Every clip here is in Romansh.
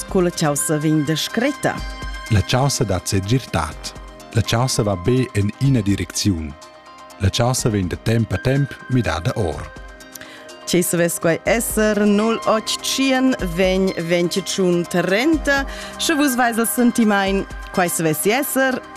sco la chaussa vegn descretta. La chaussa dat segirtad. La chaussa va be en ina direcziun. La chaussa vegn da temp a temp midada or. Ce savess quai esser 085 vegn 25 30, sche vus veis il sentimain quai savessi esser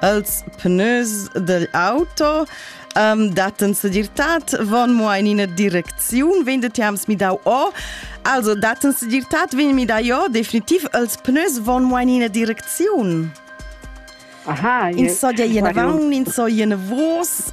Els pneus degl auto um, datten segirtad von mo in ina direcziun wenn de tiams mi dau o also datten segirtad wenn mi dai o definitiv els pneus von mo in ina direcziun aha in so ja in avant in so in vos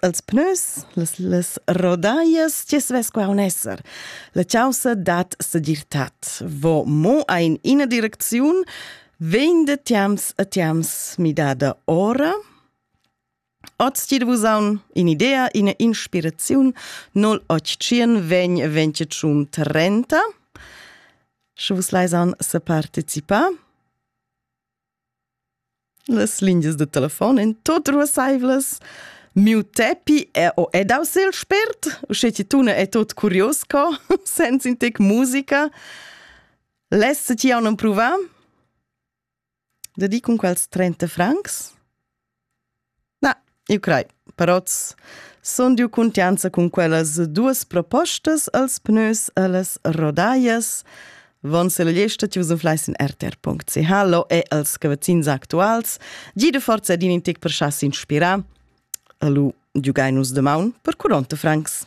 Els pnös, las, las rodaias, tge svess qua un esser. La chausa dat segirtat. Vo mo ein ina direcziun, vegn de tiams a tiams midada ora, Oz ti vusaun in idea, ina inspiraziun, nol octien vegn venticium trenta. Sche vus leisan se participa. Las lingias da telefon èn tut ruassaivlas. Miu tepi è o è daus il spert, usche ti tuna è tut curios co, senza in tec musica. Less ti jau non provà? Da di cun quels 30 francs? Na, eu crai, però sun dieu cuntianza cun quellas duos propostas als pnös e las rodaias. Von se la gliesta chi'vs inflais in rtr.ch lo e als cavazzins actuals. Gida forza ed in tic per cha's inspirar. E lu giugain nus damaun per curonta francs.